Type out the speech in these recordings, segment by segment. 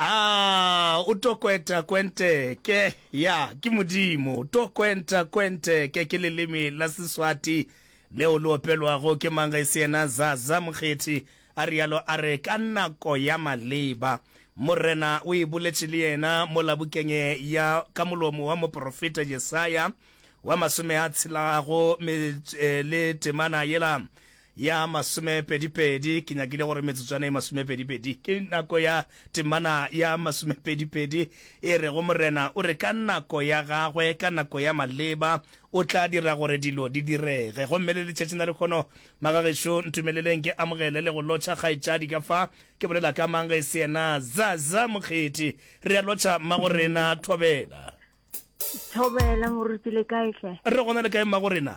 Ah, o to kwenta kwenteke ya ke modimo to kwenta kwenteke ke leleme la seswati leo le opelwago ke mang ga se yena zaza mokgethi a rialo a re ka nako ya maleba morena o e boletše le yena mo labokeng ya ka molomo wa moprofeta jesaya wa masome a tshelago eh, le temana yela Ya masomepedipedi, ke nyakile gore metsotswana e masomepedipedi. Ke nako ya temana ya masomepedipedi e rego, Morena o re, ka nako ya Gagwe, ka nako ya maleba, O tla dira gore dilo di direge. Gomme le letšatšing la lekhono, magagešo, ntumeleleng ke amogele le go lotšha kgaetšadi ka fa. Ke bolela ka mang ge e se yena? Zaza Mokgethi. Re a lotšha, mmagorena. Thobela. Thobela, moruti. Le kae hle? Re gona, le kae, mmagorena?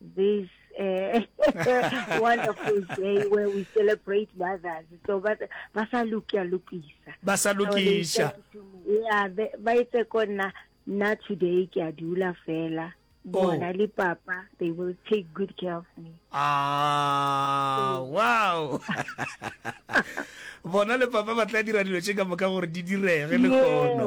this uh, wonderful day where we celebrate mothers. So but basa lukia lukisa. Basa lukisha. Yeah, ba itse kona na today ke a dula fela. Bona oh. le papa, they will take good care of me. Ah, mm. wow. Bona le papa ba tla dira dilo tse ka moka gore di direge le kono.